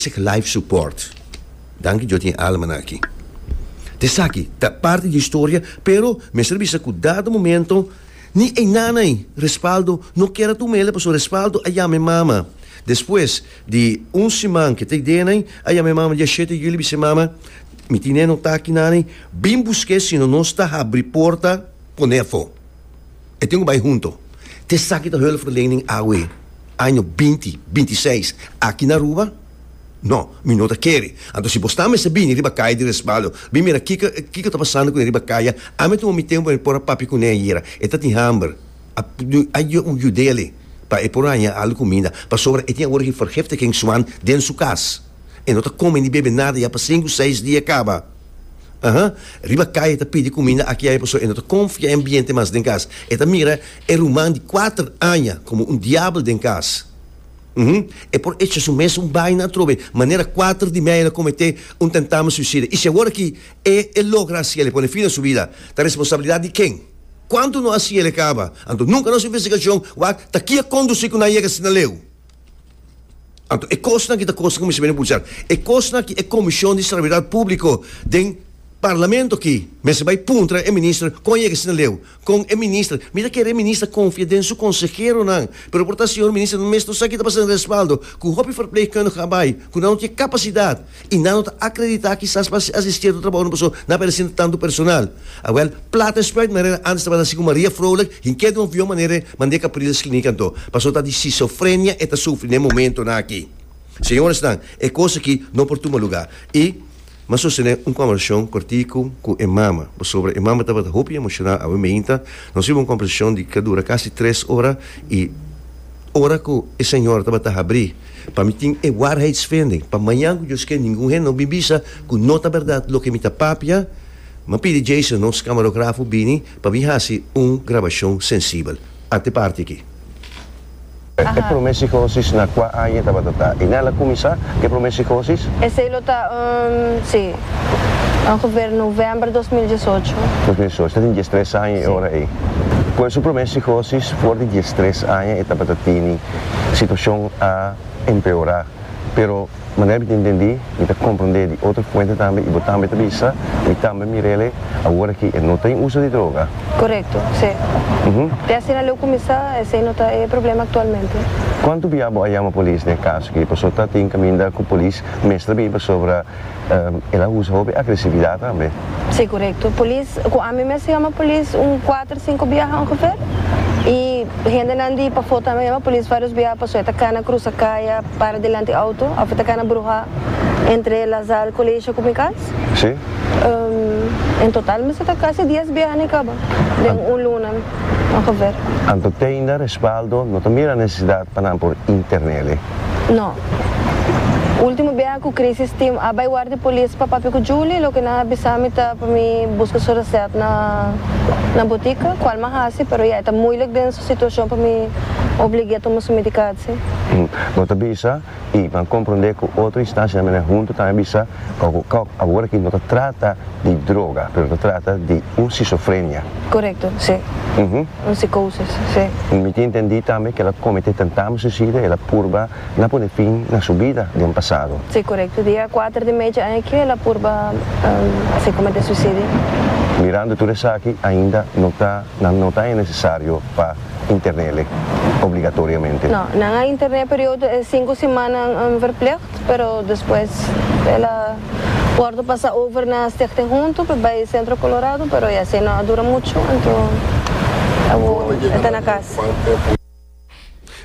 Sick Life Support. Danki Djos tin e almanan aki. Ta esaki ta parti di historia, pero mester bisa cu dado momento ni e nanay respaldo no keda ta un mele pasobra respaldo a yama e mama. Despues di un siman ke ta e denay a yama e mama dia shete juli bisa e mama, Mi tine e nota aki nanay, bin busca e sino nos ta habri porta pone afo. E tin ku bai huntu. Te esaki ta hulpverlening awe año binti binti seis aki na Aruba? No, mi no ta kere. Anto si bo sta mester bini riba kaya di Respaldo, bin mira kiko kiko ta pasando ku e riba kaya. Ami a tuma mi tempu pa mi por a papia kuné ayera. E ta tin hamber. A a yudele pa e por a haña algu kuminda. Pasobra e tin awor hivergiftigingszwang den su kas. E no ta kome ni bebe nada ya pa sinku seis dia kaba. Aha. Riba kaya e ta pidi kuminda aki y aya pasobra e no ta konfia e ambiente mas den kas. E ta mira e ruman di kuater aña komo un diabel den kas. Uhm. E por echa su mes un baina atrobe manera kuater di media lo kometé un tentamen suisida. Y si awor aki e e logra hasi el, e pone fin na su bida, ta responsabilidat di ken? Kuantu no hasi el e kaba. Anto nunka nos investigashon wak ta kia kondusí ku nan yega asina leu. Anto, e kosnan ki ta kos ku mester bini buchar, e kosnan ki e Komishon di Serabilidat Públiko den Parlamento akí mester bai puntra e minister kon a yega asina leu, kon e minister, mi ta kere e minister konfia den su konseheronan, pero por ta señor minister nan mes no sa kita pasa den respaldo ku hopi verpleegkundige a bai ku nan no tin e kapasidat. I nan no ta akreditá kisas pa si así sierto trabahonan pasobra nan a bira sinta tantu personal. Awèl, plata e spruit manera ántes tabata así ku Maria Froelich tin ke di un avion manera mand'é Capriles Klinik anto, pasobra ta di sisofrenia e ta sufri n'e momentonan akí. Señoresnan, e kos akí no por tuma lugá. I M'ha sostené un kòmbersashon kòrtiku ku e mama, pasobra e mama tabata hopi emoshonal awe meinta. Nos hiba un kòmbersashon di ke dura kasi tres ora i ora ku e señora tabata habrí, Pa mi tin e waarheidsvinding, pa mañan cu Dios kier ningun hende no bin bisa cu no ta berdad loke mi ta papia, m'a pidi Jason, nos camarografo, bini pa mi haci un grabacion sensibel. A te parti aki. E prome sicosis na cua aña tabata ta y nan la cuminsa e prome sicosis? Esey lo ta um, si, ongeveer november dos mil diesocho. Dos mil diesocho, ta tin diestres aña e ora ey. Cu e su prome sicosis for di diestres aña e tabata tini? situacion a empeora, pero manera mi ta intendi, mi ta compronde di otro fuente tambe y bo tambe ta bisa, mi tambe mirele, awor aki e no ta en uso di droga. Correcto, si. Te asina leu cuminsa, esey no ta e problema actualmente. Cuantu bia bo a yama polis n'e caso aki? Pasobra ta tin caminda cu polis mester biba sobra. El a usa hopi agresividad tambe. Si corecto. Polis, cu ami mes a yama polis un cuater, cinco biaha ongeveer. Y hendenan di pafó tambe a yama polis varios biaha paso e ta cana cruza cay a para dilanti auto of e ta cana bruha entre La Salle Colegio cu mi cas. Si. En total mester ta casi dies biaha na e caba den un luna ongeveer. Anto teinda respaldo no ta mira necesidad pa nan por internele. No. Ultimo biaha cu Crisis team a bay war di polis pa papia cu Julie, loke nan a bisa mi ta pa mi busca su reset na na botica, cual m'a haci, pero ya e ta moeilijk den su situacion pa mi oblig'é tuma su medicatie. Hm. Bo ta bisa y ban comprende cu otro instancia mene hunto tambe a bisa pa cu Kok awor aki no ta trata di droga, pero ta trata di un schizofrenia. Corecto, si. Hm. Un psicosis, sí. Mi miti intendi tambe ke el a kometé tentame suicida, el a purba na pone fin na su bida den pasado. Sí, korekto. Dia kuater di mechi aña aki el a purba si kometé suicidio. Mirando tur esaki ainda no ta nan no ta aña nesesario pa internele obligatoriamente. No, nan a interné periodo e sinku simannan verpleg Pero despues el a wòrdu pasa over na Stichting Huntu pa bai Centro Colorado, pero e asina no a dura muchu, anto awor e ta na kas.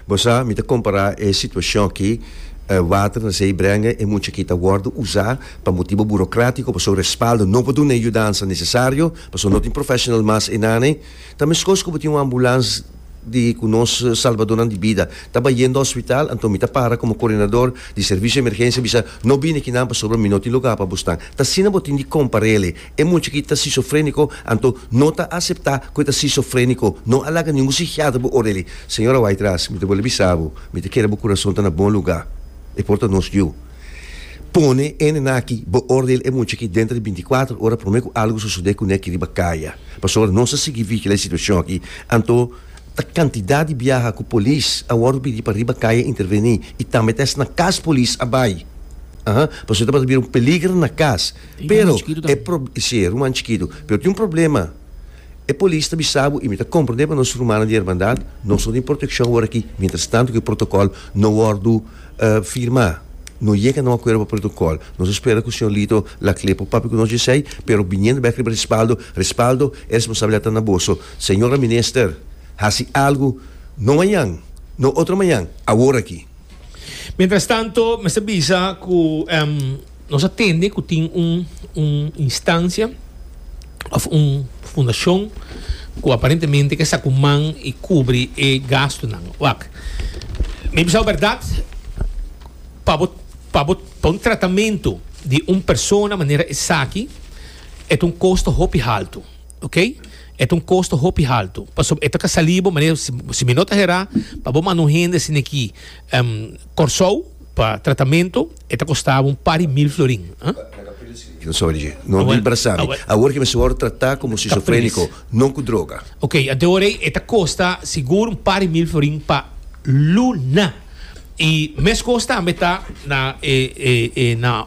Bo sa, mi ta kompará e situashon akí, water na sei brenga, e mucha akí ta wòrdu usá pa motibu burokratiku, pasobra respaldo no por duna e yudansa nesesario, pasobra no tin professional mas einane. Ta meskos ku bo tin un ambulans. di cu nos salbadornan di bida taba yendo hospital, anto mi ta para como coordinador di servicio di emergencia bisa, No bini aki nan pasobra mi no tin lugar pa bo snan. Ta asina bo tin di comparele. E mucha aki ta schizofrenico, anto no ta acepta cu e ta schizofrenico. No a laga ningun psichiatra bo oreli. Señora Wyctras, mi ta bol'e bisa bo, mi ta kere bo curason ta na bon lugar. E por ta nos yu. Pone e nenan aki, beoordeel e mucha aki denter di binti kuater ora prome ku algu sosode kuné aki riba kaya. Pasobra nos a sigui vigila e situashon aki, anto ta kantidat di biaha ku polis a wòrdu pidi pa riba kaya intervení i tambe ta esnan kas polis a bai. Aha, pasobra ta bira un peliger na kas. Pero, e prob, si, e ruman chikitu. Pero tin un problema. E polis ta bisa bo y mi ta comprende pa nos rumannan di Hermandad no so tin proteccion ora aki mientras tanto cu e protocol no wordo firma. No yega na un acuerdo pa protocol. Nos a spera cu Señor Lito la clea pa papia cu nos djesey pero biniendo bek riba respaldo, respaldo e responsabilidad ta na boso. Señora Minister, haci algo no mañan, no otro mañan, awor aki. Mientras tanto mester bisa cu. Nos a tende cu tin un un instancia of un fundacion cu aparentemente ke sa cu man y cubri e gastonan. Wak, mi bisa berdad pa bo pa bo pa un tratamento di un persona manera esaki e ta un costo hopi halto, ok, e ta un costo hopi halto pasobra e ta ka sali bo manera si mi no ta hera pa bo manda un hende sino ki. Kòrsou pa tratamento e ta kostaba un par di mil florin. E nos ora dje, no di brasa mi. Awor ke mi su wòrdu tratá komo skizofréniko, no ku droga. Ok, a de ora ei e ta kosta sigur un par di mil florin pa luna. I meskos tambe ta na e e na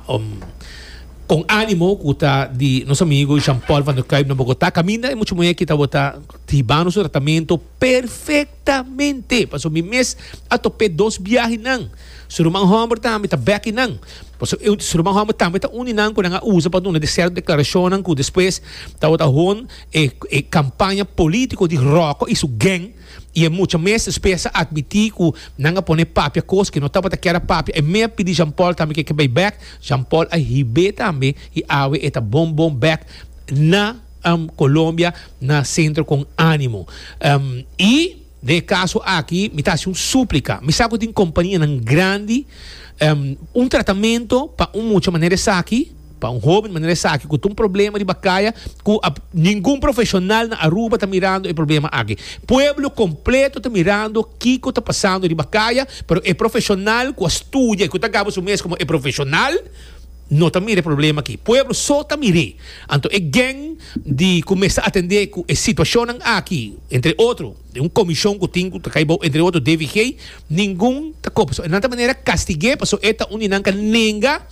kon ánimo ku ta di nos amigu Jean Paul Van der Kuyp na Bogotá. Kaminda e muchu muhé aki tabata hibando su tratamento perfekto. Ta mente, paso mi mes a top'é dos biahi nan. Su ruman hòmber tambe ta bèki nan, paso e su ruman hòmber tambe ta uni nan ku nan a usa pa duna di sèrto deklarashonnan ku despues tabata hon e e kampaña polítiko di Ròkò i su gèng i e mucha mes despues a atmití ku nan a pone papia kos ku e no tabata kier a papia. E mea pidi Jean Paul tambe ku e ke bai bèk. Jean Paul a hib'é tambe i awe e ta bon bon bèk na. Colombia na centro con animo y den e caso aki mi ta haci un suplica mi sa cu tin companianan grandi un tratamento pa un mucha manera esaki pa un hoben manera esaki cu ta un problema riba caya cu ningun profesional na Aruba ta mirando e problema aki pueblo completo ta mirando kico ta pasando riba caya pero e profesional cu a studia y cu ta gaba su mes como e profesional. No ta mira e problema aki. Pueblo so ta mir'é. Anto e gèng di ku mester atendé ku e situashonnan aki, entre otro, den un komishon ku tin, ku ta kai bou entre otro DVG, ningun ta koba. So e nan ta manera kastig'é pasobra e ta un di nan ka nenga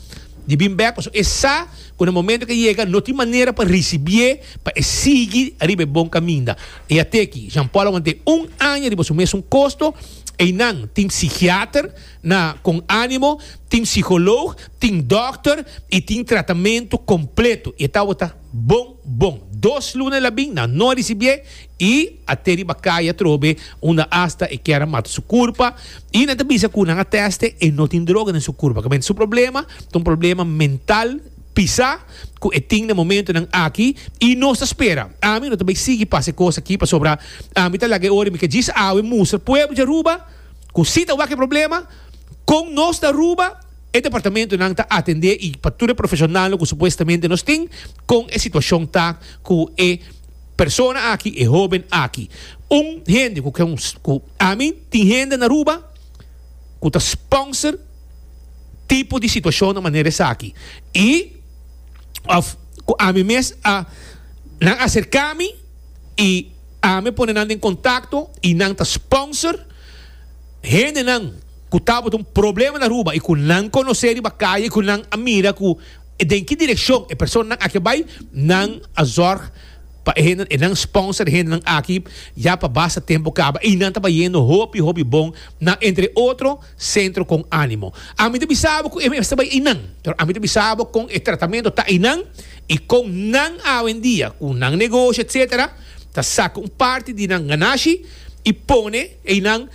di bin bèk pasobra e sa ku na momento ke yega no tin manera pa risibié pa e sigui ariba e bon kaminda. I a te ki, Jean Paul a want'é un aña riba su mesun kosto. Einan tin psikiater. Na Con Animo tin psiholoog, tin dòkter i tin tratamentu kompletu. I e tabata bon bon. Dos luna e labin nan no a risibié i a te riba kai atrobe unda asta e kier a mata su kurpa i nan ta bisa ku nan a tèste e no tin droga den su kurpa. Kaminda su problema ta un problema mental pisá ku e tin den momentunan aki i nos ta spera. Ami no ta bai sigui pasa e kos aki pasobra ami ta laga e ora i mi ka djis awe mustra pueblo di Aruba. Cu si ta wak e problema, con nos ta Aruba, e departamentonan ta atende y pa tur e profesionalnan cu supuestamente nos tin, con e situacion ta cu e persona aki, e hoben aki. Un hende cu con, cu ami tin hende na Aruba cu ta sponsor tipo di situacionnan manera esaki y of cu ami mes a, nan acercami y. Ame pone nan den contacto y nan ta sponsor hendenan cu tabata un problema na Aruba y cu nan conoce riba calle y cu nan a mira cu den ki direccion e personanan aki a bay, nan a zorg pa e hende, nan sponsor e hendenan aki ya pa basta tempo caba y nan ta bayendo hopi hopi bon na entre otro. Centro con animo. Ami ta bisa bo cu e mester bay eynan, pero ami ta bisa bo con e tratamento ta eynan y con nan awendia, cu nan negoshi etc. Ta saca un parti di nan ganashi y pone eynan,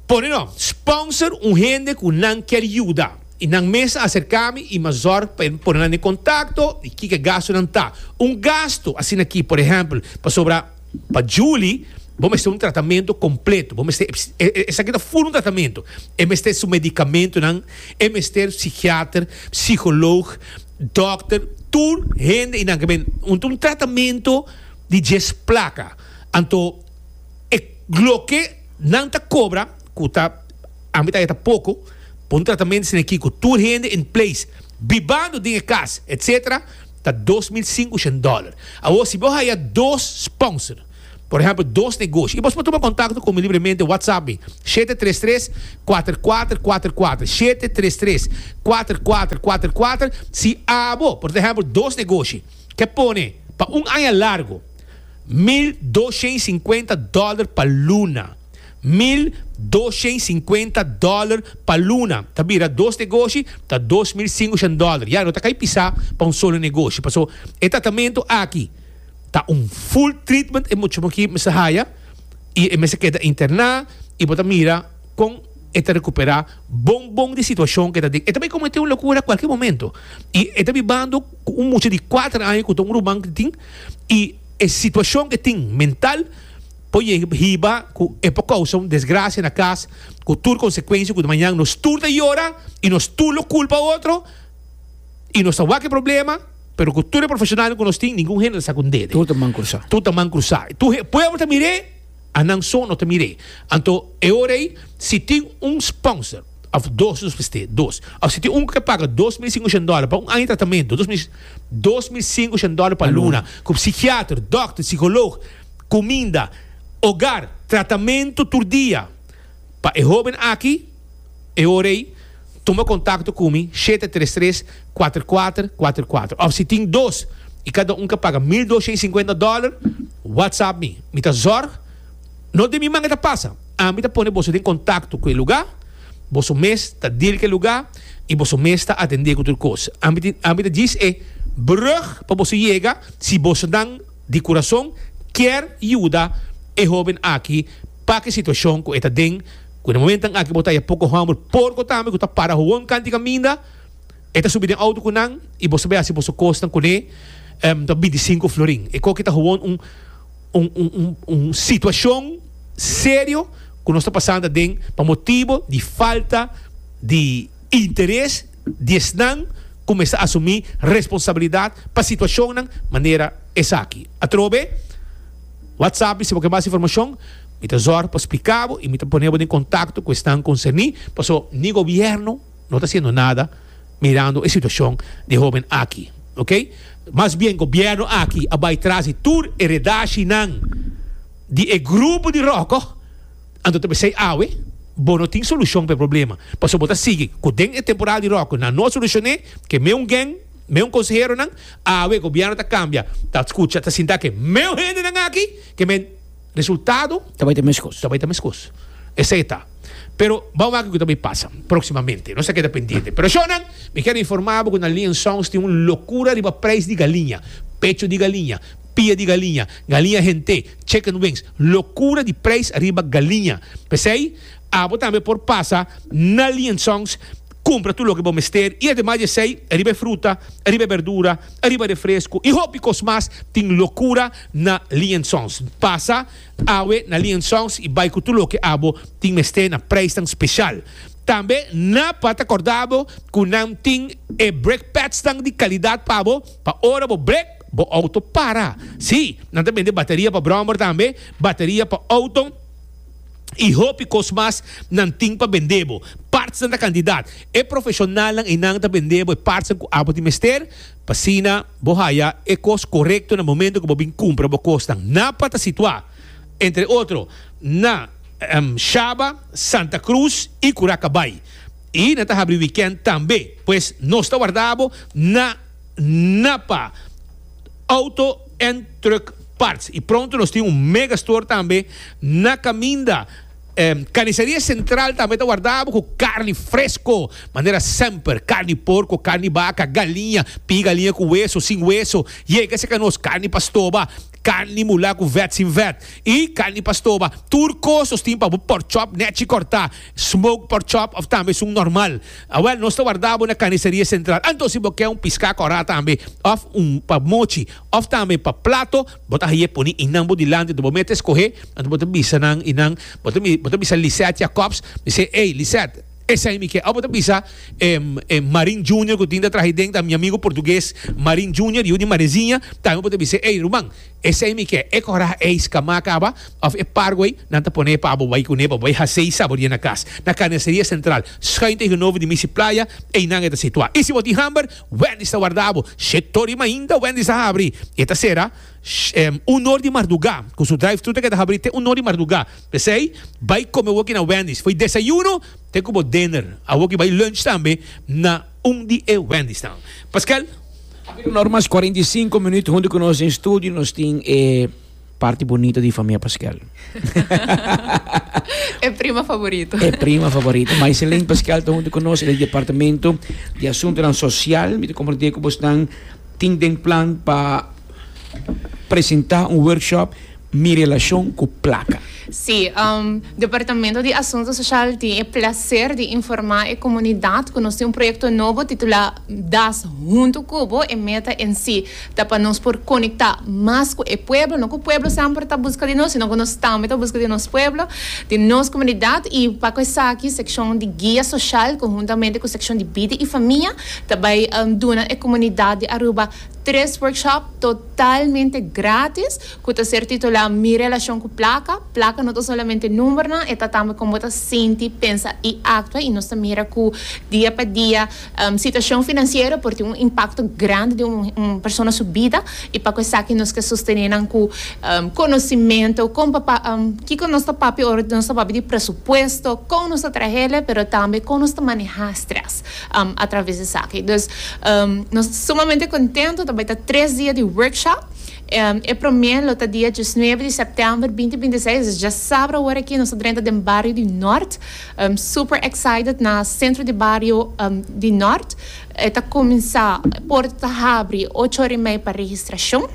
pone no, sponsor un hende cu nan kier yuda. Y nan mes a acerca mi y m'a zorg pa e pone nan den contacto y kiko e gastonan ta. Un gasto asina aki, por ejemplo, pasobra. Pa Julie, bo mester un tratamentu kompletu. Bo mester, esaki ta fun un tratamentu. E mester su medikamentunan, e mester psikiater, psikoloog, dòkter, tur hende i nan ke ben. Un un tratamentu di djes plaka. Anto e loke nan ta kobra, ku ta a mitad e ta poko, pa un tratamentu asina aki ku tur hende in place, bibando den e kas, etsetera. ta dos mil sinkushen dòler. Awor, si bo haya dos sponsor, por ehèmpel dos negoshi, i bos por tuma kontakto ku mi libremente, whatsapp mi, shete tres tres, kuater kuater kuater kuater, shete tres tres, kuater kuater kuater kuater. Si abo, por ehèmpel dos negoshi, ke pone pa un aña largu mil dos shen i sinkuenta dòler pa luna, mil doshèn sinkuenta dòler pa luna. Ta bira dos negoshi, ta dos mil singoshan dòler. Ya, no ta kai pisá pa un solo negoshi. Paso, e tratamentu aki ta un full treatment e muchachnan aki mester haya i e mester keda interná i bo ta mira kon e ta rekuperá bon bon di situashon ku e ta den. E ta bay kometé un lokura kualke momentu. I e ta bibando ku un mucha di kuater aña ku ta un ruman ku tin i e situashon ku e tin mental. Por hiba cu e por causa un desgracia na cas cu tur consecuencia cu de mañan nos tur ta yora y nos tur lo culpa otro y nos ta wak e problema, pero cu tur e profesionalnan cu nos tin ningun hende ta sa cu n'dede. Tur ta man crusa. Tur ta man crusa. Tur e pueblo ta mir'e, a nan so no ta mir'e. Anto e ora ey si tin un sponsor of dos nos mester, dos, of si tin un cu ke paga dos mil sin ocen dola pa un aña tratamento, dos mil, dos mil sin ocen dola pa luna, cu psichiater, dokter, psicoloog, kuminda, ogar, tratamentu tur dia pa e hóben aki, e ora ei tuma kontakto ku mi shete tres tres kuater kuater kuater kuater òf si tin dos i kada un ka paga mil dos shei sinkuenta dòler whatsapp mi, mi ta zòrg no den mi manga ta pasa, ami ta pone boso den kontakto ku e lugá, boso mes ta dir ku e lugá i boso mes ta atendé ku tur kos, ami ta djis e brùg pa boso yega si bosonan. di kurason kier yuda e hoben aki paki situashon ku e ta den, ku den momentan aki bo ta haya poko hòmber porko tambe ku ta para howon kanti kaminda, e ta subi den outo ku nan i boso bai hasi boso kosnan kuné, em ta bintisinku florin. E koki ta howon un un un un situashon serio ku nos ta pasanta den pa motibu di falta di interes. di esnan kumesa asumí responsabilidat pa situashonnan manera esaki. Atrobe, WhatsApp mi si bo ke mas informashon, mi ta zòrg pa splika bo i mi ta pone bo den kontakto ku esnan konserní, paso ni gobièrnu no ta hasiendo nada mirando e situashon di e hóben aki, oke. Mas bien gobièrnu aki a bai tras di tur e redashi nan di e grupo di ròkò. Anto ta p'esei awe bo no tin solushon p'e problema, pasobra bo ta sigui ku den e temporada di ròkò nan no a solushoné ke meun gèn, meun konseheronan. Awe gobièrnu ta kambia, ta skucha, ta sinta ke meun hendenan aki, ke men resultado ta bai ta meskos. Esei ta. Pero bou maki ku ta bai pasa próksimamente. Nos ta keda pendiente. Pero shònan, mi kier informá bo ku na Liansongs tin un lokura riba preis di galiña, pecho di galiña. pia di galiña, galiña hent'é, chicken wings, lokura di preis riba galiña. P'esei, abo tambe por pasa na Liensongs, kumpra tur loke bo mester i ademas di esei, riba e fruta, riba e berdura, riba refresku i hopi kos mas, tin lokura na Liensongs. Pasa awe na Liensongs i bai ku tur loke abo tin mester na preisnan spesial. Tambe nan por a ta kòrda bo ku nan tin e brekpèdsnan di kalidat pa bo pa ora bo brek. Bo auto para? Sí, nan ta bende bateria pa brommer tambe, bateria pa auto y hopi cos mas nan tin pa bende bo. Partsnan ta cantidad. E profesionalnan eynan ta bende bo e partsnan cu abo tin mester, p'asina bo haya e cos corecto na momento cu bo bin cumpra bo cosnan. Napa ta situa, entre otro, na Shaba, Santa Cruz y Curaca Bay. Y nan ta habri weekend tambe. Pues nos ta warda bo na. Napa Auto en Truck Parts y pronto nos tin un mega store tambe na caminda. Carniceria Central tambe ta wardabo cu carni fresco manera semper, carni porco, carni baca, galiña, pie galiña cu weso, sin weso, yega seca nos, carni pa stoba, carni mula cu vet, sin vet y carni pa stoba. Tur cos nos tin pa bo pork chop, nechi corta, smoked pork chop of tambe sun normal. Awel, nos ta warda bo na Carniceria Central. Anto si bo ke un piská kòrá tambe, òf un pa mochi, òf tambe pa plato, bo ta haye poni i nan bo dilanti. Anto bo mete skohe, anto bo ta bisa nan i nan, bo ta bo ta bisa Lisette Jacobs, mi se, Ey, Lisette, esei mi ke. Òf bo ta bisa e e Marin Junior ku tin ta traha ahi den, ta mi amigu portugues, Marin Junior, yu di Mareziña, tambe bo ta bisa, Ey, ruman. Esei mi ke, e kora ei skamá kaba, òf e pargo ei, nan ta pone pa bo bai kuné, bo bai hasei saborié na kas. Na Carniceria Central, skuin tegenover di Missy Playa, einan e ta situá. I si bo tin hamber, Wendy's ta warda bo. Shit tori, mainta Wendy's a habri, e ta sera un or di mardugá, ku su drive-thru ta keda habri te un or di mardugá. P'esei, bai kome awoki na Wendy's, for desayuno te ku bo dinner. Awoki bai lunch tambe na. un di e wendisnan. Paskel. Habido nor mas cuarenta y cinco minuut hunto cu nos den studio, nos tin e parti bonito di famia Paskel. E prima favorito. E prima favorito. Maiselin Paskel ta hunto cu nos den departamento di asuntonan social. Mi ta comprende cu bosnan tin den plan pa presenta un workshop. Mi relacion cu placa. Sí, Departamento di Asunto Social tin e placer di informa e comunidad cu nos tin un proyecto nobo titula Das Hunto cu Bo. E meta en sí ta pa nos por conecta mas cu e pueblo, no cu pueblo semper ta busca di nos, sino cu nos tambe ta busca di nos pueblo, di nos comunidad. Y pa cu esaki seccion di Guia Social conhuntamente cu seccion di Bida y Famia ta bay duna e comunidad di Aruba tres workshop totalmente gratis. ku ta ser titulá Mi relashon ku plaka, plaka no ta solamente numbernan, e ta tambe kon bo ta sinti, pensa i aktua, i nos ta mira ku dia pa dia situashon finansiero por tin un impakto grandi den un persona su bida, i pa ku esaki nos ke sostené nan ku konosimentu, kon pa kiko nos ta papia ora nos ta papia di presupuesto, kon nos ta trahele, pero tambe kon nos ta manehá strès atraves di esaki. Dus nos ta sumamente kontento, ta bai ta tres dia di workshop E promé lo ta dia diesnuebe di sèptèmber binti binti seis, es dja sabra ora aki nos ta drenta den bario di Nòrt, super excited na sentro di bario di Nòrt e ta kuminsá porta ta habri ocho ora i mei pa registrashon.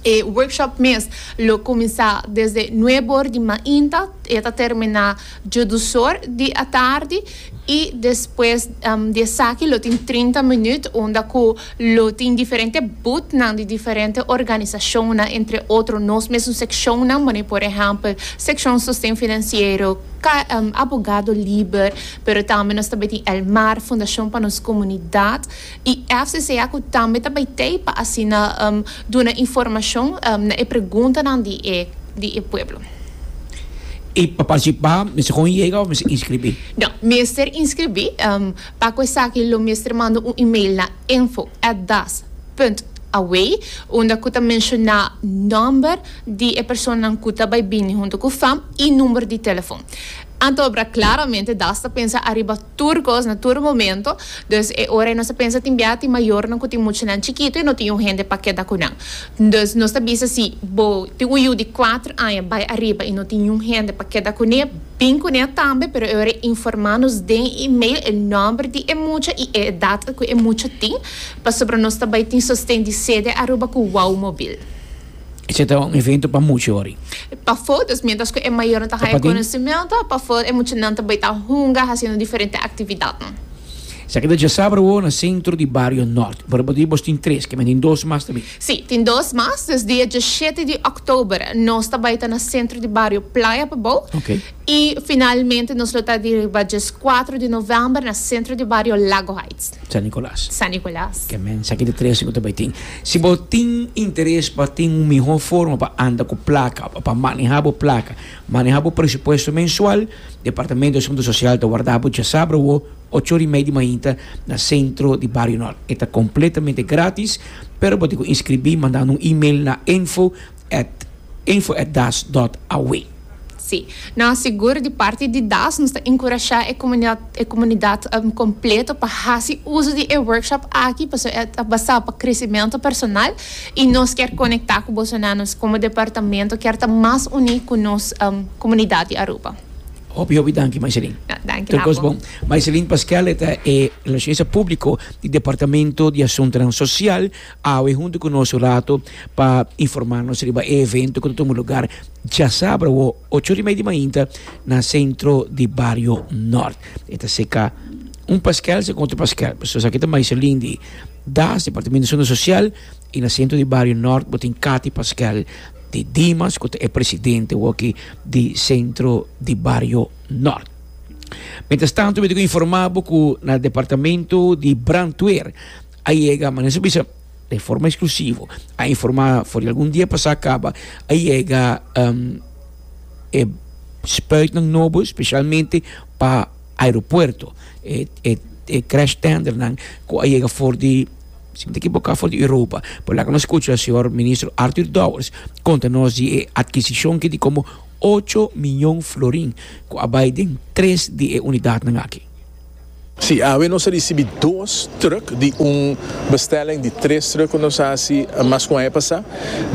E workshop mes lo kuminsá desde nuebe ora di mainta e ta terminá Jodusor di atardi y despues di esaki lo tin trinta minuut unda cu lo tin diferente bootnan di diferente organisacionnan entre otro nos mesun seccionnan bo ne por ehempel seccion sosten financiero, abogado liber pero tambe nos ta be tin el mar fundacion pa nos comunidad. y FCCA cu tambe ta bay tey pa asina duna informacion na e preguntanan di di e pueblo. Y pa participa mester con yega of mester inscribi? No, mester inscribi. Pa cu esaki lo mester manda un email na info at das punt away unda cu ta menciona nomber di e personanan cu ta bay bini hunto cu fam y number di telefon. Anto obra claramente das ta pensa ariba Tur cos na tur momento. Dus e ora nos ta pensa tin bia tin mayornan cu tin muchanan chikito y no tin un hende pa keda cu nan. Dus nos ta bisa si bo tin un yu di cuater aña bay ariba y no tin niun hende pa keda cu ne, bin cu ne tambe pero e ora informa nos den email e nomber di e mucha y e edad cu e mucha tin pasobra nos ta bay tin sosten di sede Aruba cu Wauw Mobiel. E ce ta un evento pa mucho hori. Pa for, dus mientras cu e mayornan ta haya conocimento, pa for e muchanan ta bay ta hunga haciendo diferente actividadnan. Esaki ta dja sabro awo na centro di Bario Norte. Por ejemplo, di bos tin tres, kimen tin dos mas tambe. Si, tin dos mas, dus dia diashete di october nos ta bay ta na centro di Bario Playa pa bou. Ok. I finalmente nos lo ta di riba djes kuater di novèmber na sentro di bario Lago Heights. San Nicolas. San Nicolas. Ke mensa ki ta trese ku ta bai tin. Si bo tin interes pa tin un mihó forma pa anda ku plaka, pa pa manehá bo plaka, manehá bo presupuesto mensual, Departamento di Asuntu Sosial ta warda bo djasabra awo ocho ora i mei di mainta na sentro di bario Nort. E ta kompletamente gratis, pero bo tin ku inskribí mandando un email na info. at info at das dot awe. Sí, nos sigur di parti di das nos ta enkurashá e komunidat e komunidat kompleto pa hasi uso di e workshop aki pasobra e ta basá pa kresimentu personal i nos kier konektá ku boso nan. Nos komo departamento kier ta mas uní ku nos komunidat di Aruba. Hopi hopi danki Maiselin. No, danki Tur kos Lapo. bon. Maiselin Pasquel e ta e Relacionista Públiko di Departamento di Asuntunan Sosial. Awe huntu ku nos un rato pa informá nos riba e evento ku ta tuma lugar djasabra awo ocho ori mei di mainta na sentro di bario Nort. E ta seka un paskèl seka otro paskèl. Pasobra esaki ta Maiselin di Das, Departamento Zona Sosial, i na sentro di bario Nort bo tin Kati paskèl di Dimas ku ta e presidente awo aki di sentro di bario Nort. Mientras tanto mi ta ku informá bo ku na departamento di Brantweer, A yega, ma nan sa bisa de forma eksklusivo, a informá for di algun dia pasá kaba, a yega e spuitnan nobo spesialmente pa aeropuerto, e e e crash tendernan ku a yega for di, si mi ta ekiboká, for di Europa. Por laga nos skucha señor Ministro Arthur Dowers konta nos di e adkisishon ki di komo ocho miyon florin ku a bai den tres di e unidatnan aki. Si awe nos a risibi dos trùk di un bestelling di tres trùk ku nos a hasi mas ku un aña pasá.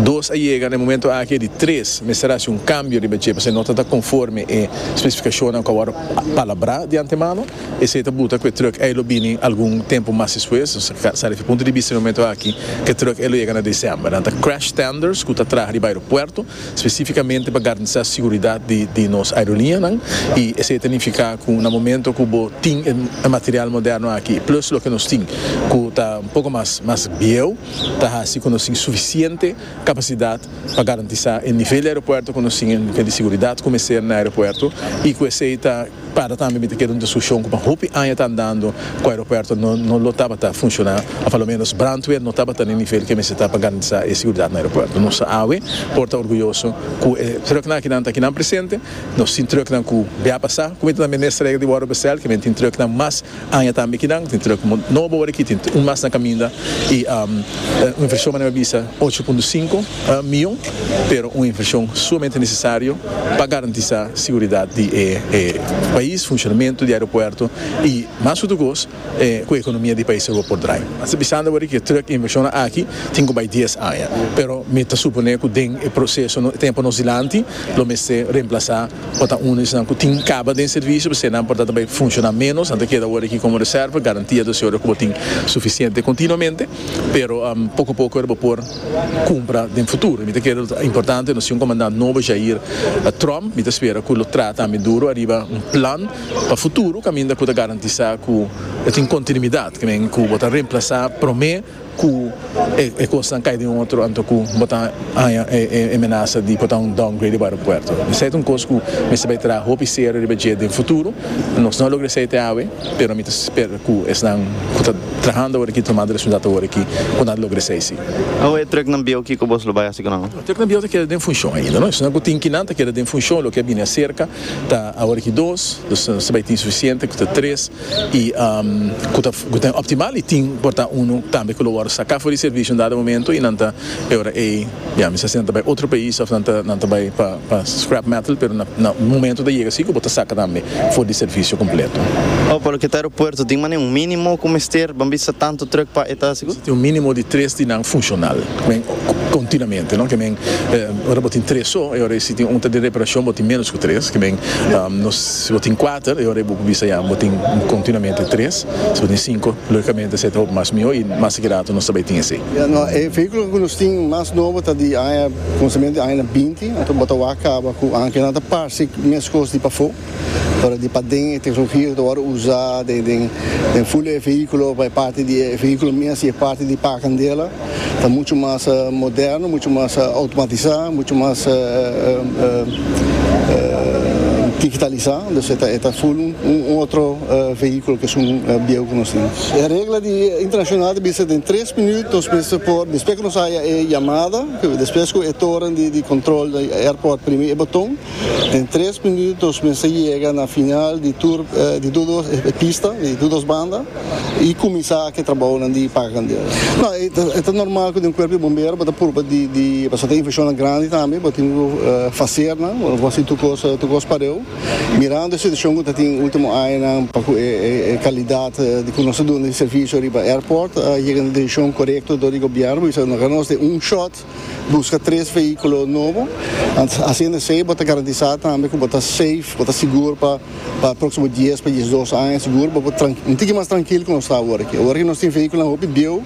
Dos a yega na e momentu aki, e di tres mester hasi un kambio riba dje pasobra no ta ta konforme e spesifikashonnan ku a wòrdu palabrá di antemano. Esei ta buta ku e trùk ei lo bini algun tempu mas despues. Nos ta sa riba e punto di bista na e momentu aki ku e trùk ei lo yega na desèmber. Nan ta crash tenders ku ta traha riba aeropuerto. Spesífikamente pa garantisá seguridat di nos aeroliñanan i esei ta nifiká ku na momento ku bo tin e material moderno aki plùs loke nos tin ku ta un poko mas bieu ta hasi ku nos tin sufisiente kapasidat pa garantisá e nivel di aeropuerto ku nos tin e nivel di seguridat ku mester na aeropuerto i ku esei ta Para tambe mi ta kere un diskushon ku pa hopi aña ta andando ku aeropuerto no lo tabata funshoná òf a lo ménos brandweer no tabata na e nivel ke mester ta pa garantisá e seguridat na aeropuerto. Nos ta awe por ta orguyoso ku e trùknan akinan ta kinan presente. Nos tin trùknan ku bia pasá. Ku mi ta na Minister Hege di Wòrdu Bestel kimen tin trùknan mas. Aña tambe kinan tin truk nobo ora aki, tin un mas na kaminda i un invershon manera mi a bisa ocho punto sinku mion, pero un invershon sumamente nesesario pa garantisá seguridat di e pais, funshonamentu di aeropuerto i mas ku tukos ku e ekonomia di e pais lo por drai. Mi ta bisanda ora ki e truk invershonnan aki tin ku bai dies aña, pero mi ta suponé ku den e proseso tempu nos dilanti lo mester remplasá. Por ta unda esnan cu tin caba den servicio p'esei nan por ta ta bay funciona menos, nan ta keda awor aki como reserva, garantia ta sido ora cu bo tin suficiente continuamente, pero poco a poco ora bo por cumpra den futuro. Mi ta kere ta importante nos tin un comandant nobo Jair Trump, mi ta spera cu lo traha tambe duro ariba un plan pa futuro caminda cu ta garantisa cu tin continuidad, caminda cu bo ta remplaza prome. ku e kosnan kai den otro anto ku bo ta haña e menasa di por ta un downgrade di aeropuerto. Esei ta un kos ku mester bai traha hopi serio riba dje den futuro. Nos no a logra esei te awe, pero mi ta spera ku esnan ku ta trahando awor aki, tomando responsabilidat awor aki, por nan logra esei si. Awe e trèk nan bieu kiko bo lo bai hasi ku nan? Trèk nan bieu ta keda den funshon ainda. Esnan ku tin kinan ta keda den funshon, loke a bini aserka ta awor aki dos, dus ta bai tin sufisiente ku ta tres. y cu ta ta optimal y tin por ta uno tambe cu lo worde saca for di servicio un dado momento y nan ta e ora ey ya mi sa si nan ta bay otro pais of nan ta nan ta bay pa pa scrap metal pero na na un momento ta yega si cu bo ta saca tambe for di servicio completo. Oh, pa loke ta aeropuerto tin mane un minimo cu mester ban bisa tanto truck pa e ta hasi cu? Tin un minimo di tres di nan funcional cu men continuamente no cu men ora bo tin tres so e ora ey si tin un ta di reparacion bo tin menos cu tres cu men nos. Si bo tin kuater, e ora ei bo por bisa ya bo tin kontinuamente tres. Si bo tin sinku, lógikamente esei ta hopi mas mihó i mas di rato nos ta bai tin esei. E vehíkulonan ku nos tin mas nobo ta di aña, konsumento di añanan binti, anto bo ta wak kaba ku aña ku nan ta parse meskos di pafó, pero di paden e teknologia ku ta wòrdu usá den ful di e vehíkulo pa e parti di e vehíkulo mes i e parti di pa'a kandela. Ta mucho mas moderno, mucho mas automatisa, mucho mas digitalisá, entonces e ta full un otro vehiculo ke esun bieu ku nos tin. E regla di internacional ta bisa den tres minüt nos mester por, despues ku nos haya e yamada, despues ku e toren di control di airport primi e boton, Den tres minuto nos mester yega na final di tur di todos e pista di todos banda y cuminsa aki e trabaonan di paga candela. No e ta normal cu den cuerpo di bombero bo ta purba di di pasobra tin infeccionnan grandi tambe bo tin cu facer nan bo no por haci tur cos tur cos pareu mirando e situacion cu ta tin ultimo añanan pa cu e calidad di cu nos ta dunde servicio riba airport a yega na diricion corecto door di gobierno pasobra nos ta hablando nos de un shot. Buska tres vehículo nobo, haciendo esey bo ta garantisa tambe cu bo ta safe, bo ta sigur pa pa proximo dies pa diesdos aña, sigur bo por un tiki mas trankil cu nos ta awor aki. Awor aki nos tin vehiculonan hopi bieuw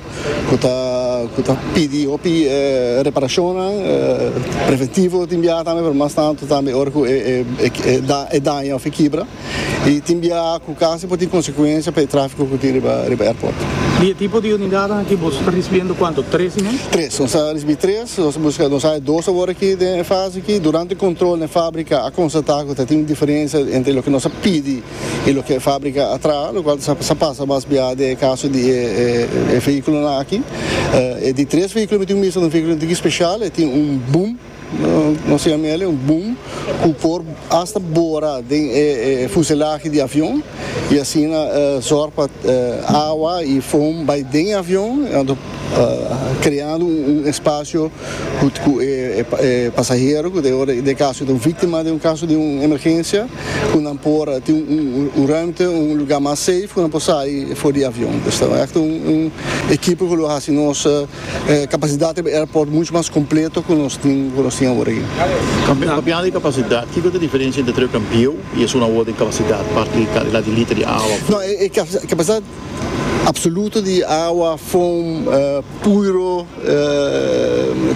cu ta cu ta pidi hopi reparacionnan, preventivo tin biaha tambe pero mas tanto tambe ora cu e daña of e kibra. Y tin biaha cu casi por tin consecuencia pa e trafico cu tin riba airport. Di e tipo di unidanan aki boso ta ricibiendo cuanto? Tres y me? Tres. Nos a ricibi tres. Nos a busca, nos haya dos awor aki den e fase aki. Durante control na e fabrica a constata cu ta tin un diferencia entre loke nos a pidi y loke e fabrica a traha, locual sa pasa mas biaha den e caso di e vehiculonan aki. E di tres vehiculo mi tin wisa, un vehiculo un tiki special, e tin un boom. Nos siña mi ale un boom cu por hasta bora den e fuselahe di avion y asina zorg pa awa y foam bay den e avion creando un espacio cu e pasahero cu den caso ta un victima den un caso di un emergencia cu nan por tin un ruimte un lugar mas safe cu nan por sai for di avion. Esta ta un ekipo cu lo haci nos. E kapasidat riba e airport muchu mas kompleto ku nos tin ku nos tin awor aki. Kampeo, Kapiando di kapasidat, kiko ta diferensia entre trio kampeo i esun awor den kapasidat, parti di kalidad di liter di awa, fon. No, e kapasidat apsoluto di awa, fon, puiro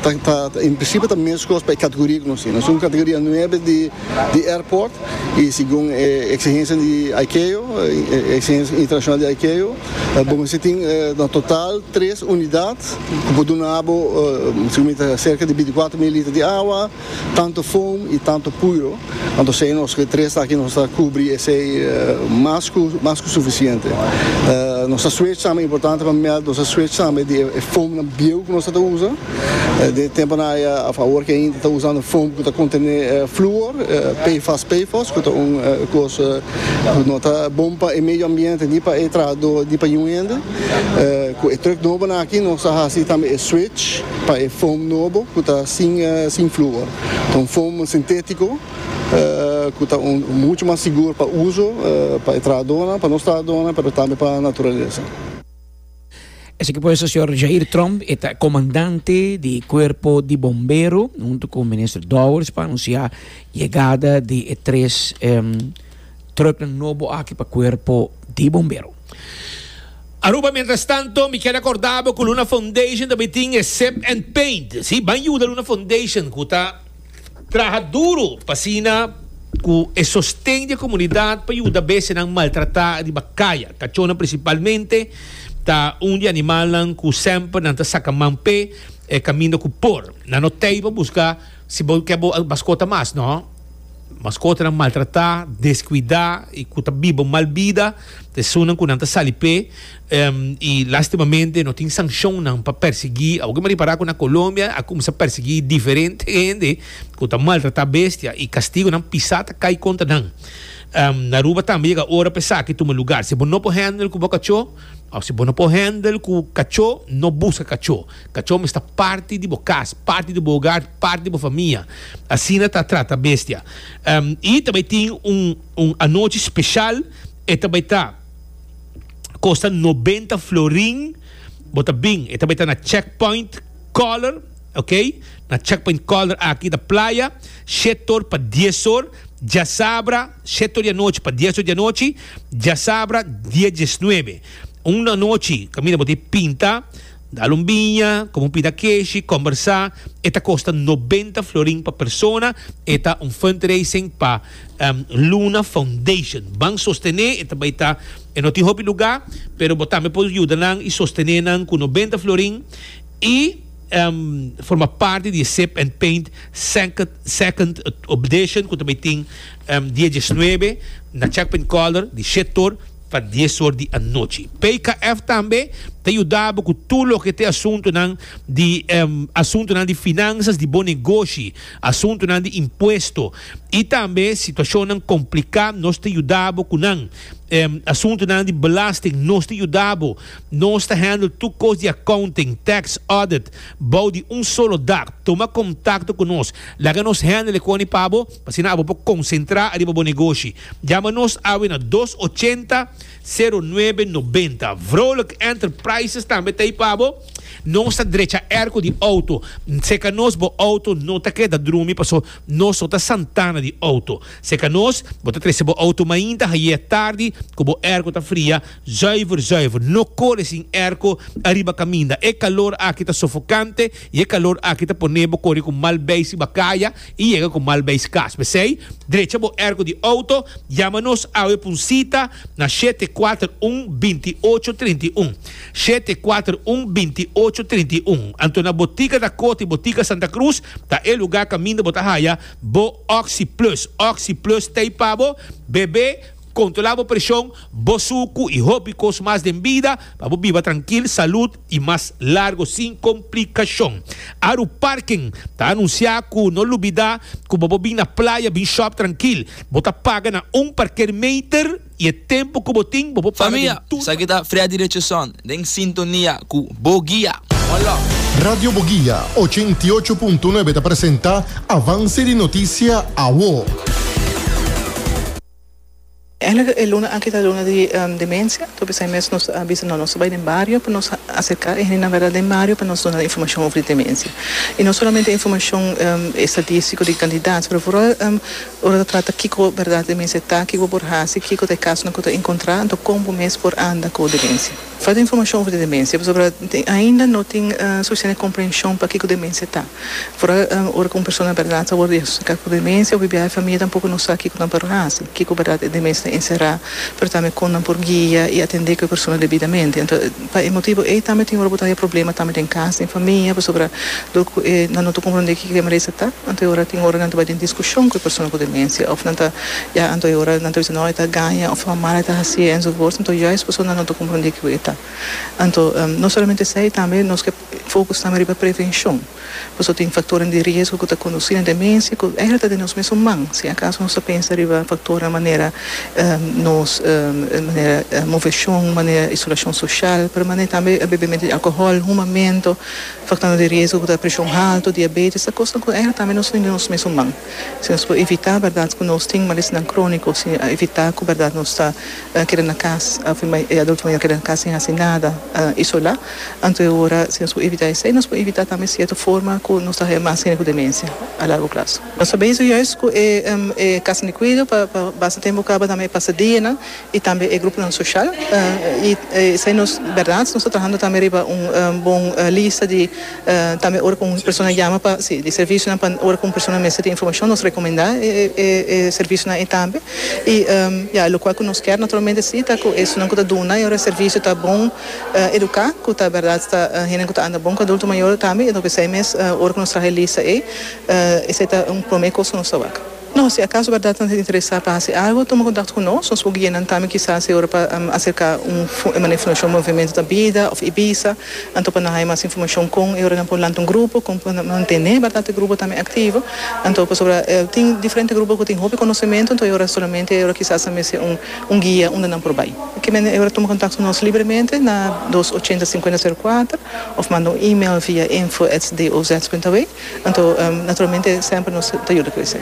ta ta en prinsipio ta meskos pa e kategoria ku nos tin. Nos tin un kategoria nuebe di di airport i segun e eksigensianan di ICAO, e eksigensianan internashonal di ICAO, Bo mester tin na total tres unidat ku por duna bo segun mi ta serka di binticuatro mil liter di awa, tantu foam i tantu puiro. Anto esei nos ku e tres aki nos ta kubri esei mas ku mas ku sufisiente. Nos ta switch tambe, importante pa meld, nos ta switch tambe di e foamnan bieu ku nos tabata usa. Den e temponan aya a fawor ke hende ta usando foam ku ta kontené fluor, PFAS, PFOS, ku ta un kos ku no ta bon pa e medio ambiente ni pa e trahadó ni pa niun hende. Ku e trùk nobonan aki nos a hasi tambe e switch pa e foam nobo ku ta sin sin fluor. Ta un foam sintétiko ku ta un muchu mas sigur pa uso pa e trahadónan, pa nos trahadónan, pero tambe pa naturalesa. Esaki pues ta señor Jair Tromp, e ta comandante di cuerpo di bombero, hunto cu minister Dowers pa anuncia yegada di e tres um, trucknan nobo aki pa cuerpo di bombero. Aruba, Mientras tanto, mi keda acordabo cu Luna Foundation tambe tin e Sip and Paint. Si, ban yuda Luna Foundation cu ta. Traha duru pa asina cu e sosten di e comunidad pa yuda bestianan maltrata riba caya. Cachonan principalmente ta un di animalnan cu semper nan ta saca man p'e e caminda cu por. Nan no tey pa busca si bo ke bo mascota mas, no. Mascotanan maltrata, descuida y cu ta biba mal bida ta esunnan cu nan ta sali p'e. y lastimamente no tin sancionnan pa persegui awor ke mari para ku na Colombia a kumsa persegui diferente hende ku ta maltrata bestia y kastigonan pisa ta kai kontra nan na Aruba tambe yega ora pa esaki tuma lugar si bo no por hendel ku bo kacho of si bo no por hendel ku kacho no buska kacho kacho mester ta parti di bo kas parti di bo hogar parti di bo famia asina ta trata bestia y ta bay tin un un anochi special e ta bay ta. kosta nobenta florin bo ta bin e ta beta na checkpoint color ok na checkpoint color aki ta playa shetor pa dies or djasabra shetor di anochi pa dies or di anochi djasabra die diesnuebe un anochi caminda bo ta e pinta dal un biña come un pita keshi combersa e ta kosta nobenta florin pa persona e ta un fundraising pa Luna Foundation ban sostené e ta bai ta e no tin hopi lugá pero bo tambe por yuda nan i sostené nan ku noventa florin i forma parti di e Sip and Paint second edition ku ta bai tin dia diesnuebe na Chapin Color di shete or pa dies or di anochi. PKF tambe ta yuda bo ku tur loke ta e asuntunan di asuntunan di finansas di bo negoshi asuntunan di impuesto I tambe situashonnan kompliká nos ta yuda bo ku nan. Asuntunan di belasting nos ta yuda bo. Nos ta handle tur kos di accounting, tax, audit bou di un solo dak. Tuma kontakto ku nos. Laga nos handle e koni pa bo, asina abo por konsentrá ariba bo negoshi. Yama nos awe na dos ochenta, sero nuebe nobenta. Vrolijk Enterprises tambe ta ei pa bo. Nos ta drecha erko di outo. Seka nos bo outo no ta keda drumi paso Nos no ta santana di auto. Se ka nos, bo ta trese bo auto mainta haie tardi ku bo airco ta fria zuiver zuiver. No kore sin airco ariba kaminda. E kalor aki ta sofokante i e kalor aki ta pone bo kore ku mal bei siba kaya i yega ku mal beis kas. P'esei, drecha bo airco di auto. Yama nos awe p'un sita na shete kuater un binti ocho trinta i un. Shete, kuater, un, binti ocho, trinta i un. Anto na Botika da Koti, Botika Santa Cruz, ta e lugá kaminda bo ta haya bo Oxi Plus. Oxi Plus ta ei pa bo bebé, kontrolá bo preshon, bo suku i hopi kos mas den bida pa bo biba trankil, salud i mas largo sin komplikashon. Aru Parken ta anunsiá ku no lubidá ku bobo bin na playa bin shòp trankil. Bo ta paga na un parker meter. I e tempu ku bo tin, bo por paga den tur pa. Esaki ta Freddy Richardson den sintonia ku Bo Guia. One love. Radio Boguia ochenta i ocho punto nuebe ta presenta Avance di Noticia Awo. Eigenlijk e luna aki ta luna di demencia, tur esei mes nos a bisa no nos ta bai den bario pa nos acerca e hendenan verda den bario pa nos duna informacion over di demencia y no solamente informacion estadístico di cantidad pero vooral Ora ta trata kiko bèrdat e mester ta, kiko por hasi, kiko ta e kasonan ku ta enkontrá, anto kon bo mes por anda ku demensia. Falta informashon over di demensia pasobra ainda no tin sufisiente komprenshon pa kiko demensia ta. Por ora ku un persona bèrdat ta wòrdu diagnostika ku demensia ofi biaha e famia tampoko no sa kiko nan por hasi, kiko bèrdat e demensia ta enserá, pero tambe kon nan por guia i atendé ku e persona debidamente. Pa e motibu ei tambe tin ora bo ta haya problema tambe den kas, den famia, pasobra dor ku e nan no ta komprondé kiko e merese ta, anto e ora tin ora nan ta bai den diskushon ku e persona ku demensia òf nan ta ya anto e ora nan ta bisa no e ta gaña òf suma mal e ta hasié enzovoorts, anto juist paso nan no ta komprondé kiko e ta. Anto no solamente esei tambe nos ke. Fokus tambe riba prevenshon, pasobra tin faktornan di riesgo ku ta kondusí na demensia ku eigenlijk ta den nos mesun man, si akaso nos ta pensa riba faktornan manera nos manera moveshon, manera isolashon soshal, pero manera tambe bebementu di alkohòl, humamentu, faktornan di riesgo ku ta preshon haltu, diabetes, ta kosnan ku eigenlijk tambe nos ta den nos mesun man. Si nos por evitá bèrdat ku nos tin malesnan króniko, si evitá ku bèrdat nos ta keda na kas, e adulto mayor keda na kas sin hasi nada, isolá. Anto e ora, si nos por evitá esei, nos por evitá tambe sierto forma ku nos ta haña mas hende ku demensia a largo plazo. Nos ta bezig juist ku e e Casa di Cuido pa pa basta tempu kaba tambe e pasadena i tambe e gruponan soshal. I esei nos bèrdat nos ta trahando tambe riba un bon lista di tambe ora ku un persona yama pa si di servisionan pa ora ku un persona mester tin informashon nos rekomendá e e e servisionan ei tambe. I ya lokual ku nos kèr naturalmente si ta ku esunnan ku ta duna e ora e servisio ta bon. educá cu ta berdad ta hende cu ta anda bon cu adulto mayor tambe y nos bisai mes ora cu nos traha e lista ey esey ta un prome cos cu nos ta wak. No, si acaso berdad nos ta interesá pa haci algo tuma contacto cu nos, nos por guianan tambe kisas e ora pa acerca un manera informacion Movimiento ta bida of Ibiza anto pa nan haya mas informacion con e ora nan por lanta un grupo, con por mantene berdad e grupo tambe activo anto pasobra tin diferente grupo cu tin hopi conocemento anto e ora solamente e ora kisas ta mester un Un guia unda nan por bai. Ke mende ora tuma kontakto ku nos libremente na dos ochenta sinkuenta seru kuater òf manda un email via info èt DOZ punt awe. Anto naturalmente semper nos ta yuda ku esei.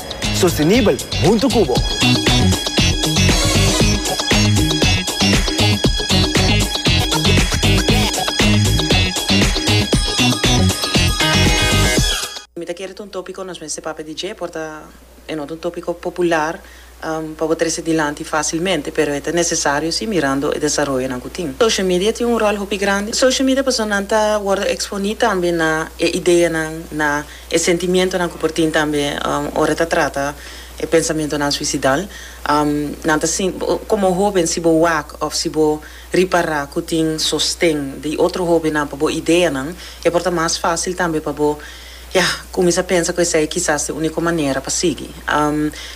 Sostenibel huntu cu bo. Mi ta kere ta un topico nos mester papia di dje por ta e no ta un topico popular pa bo trece dilanti facilmente pero e ta necesario si mirando e desaroyonan cu tin. Social media tin un rol hopi grandi. Social media pasobra nan ta wordo exponi tambe na e ideanan, na. E sentimientonan ku por tin tambe ora ta trata e pensamentonan suisidal. Nan ta sinti, komo hóben si bo wak òf si bo ripará ku tin sosten di otro hóbennan pa bo ideanan, e por ta mas fásil tambe pa bo, ya, kuminsá pensa ku esei kisas ta e úniko manera pa sigui.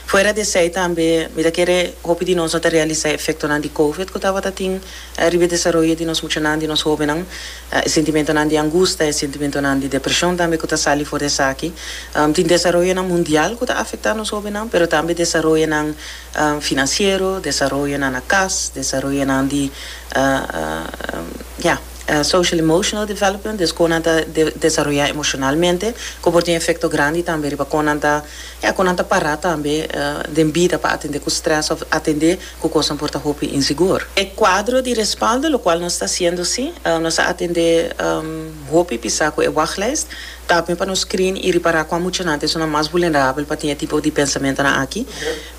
Fuera di esei tambe mi ta kere hopi di nos no ta realisá e efektonan di Covid ku tabata tin riba e desaroyo di nos muchanan, di nos hóbennan. E sentimentonan di angustia, e sentimentonan di depresion tambe ku ta sali for di esaki. Tin desaroyonan mundial ku ta afektá nos hóbennan, pero tambe desaroyonan finansiero, desaroyonan na kas, desaroyonan di ya, social-emotional development, des kon nan ta desaroyá emoshonalmente, ku por tin efekto grandi tambe riba kon nan ta, ya, kon nan ta pará tambe den bida pa atendé ku strès òf atendé. cu cosnan por ta hopi insigur. E cuadro di respaldo locual nos ta haciendo si, nos a atende hopi pisa cu e wachtlijst, tambe pa nos screen y ripara cua muchanan esun nan mas vulnerabel pa tin e tipo di pensamentonan aki.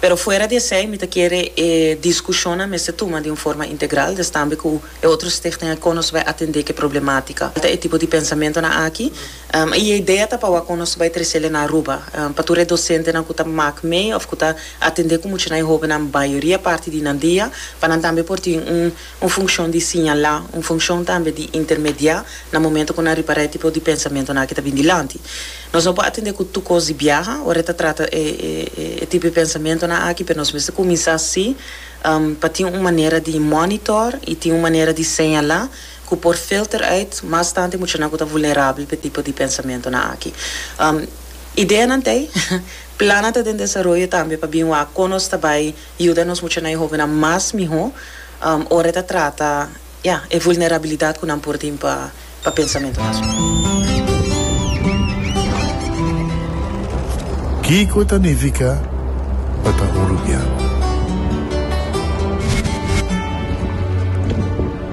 Pero fuera di esey mi ta kere e discusionnan mester tuma di un forma integral, destambe cu e otro Stichting Econos bai atende cu e problematica. Ta e tipo di pensamentonan aki I e idea ta pa wak kon nos bai tresele na Aruba, pa tur e dosentenan ku ta mak mee òf ku ta atendé ku muchanan i hóbennan mayoria parti di nan dia, pa nan tambe por tin un un funshon di siñalá, un funshon tambe di intermediá na momentu ku nan ripará e tipo di pensamentunan aki ta bin dilanti. Nos no por atendé ku tur kos di biaha ora e ta trata e e tipo di pensamentunan aki, pero nos mester kuminsá sí pa tin un manera di mònitor i tin un manera di señalá ku por filter uit mas tanti muchanan ku ta vulnerabel pa e tipo di pensamentunan aki. Ideanan ta ei, plannan ta den desaroyo tambe pa bin wak kon nos ta bai yuda nos muchanan i hóbennan mas mihó ora e ta trata, ya, e vulnerabilidat ku nan por tin pa pa pensamentunan su. Kiko ta nifiká pa ta un rubian?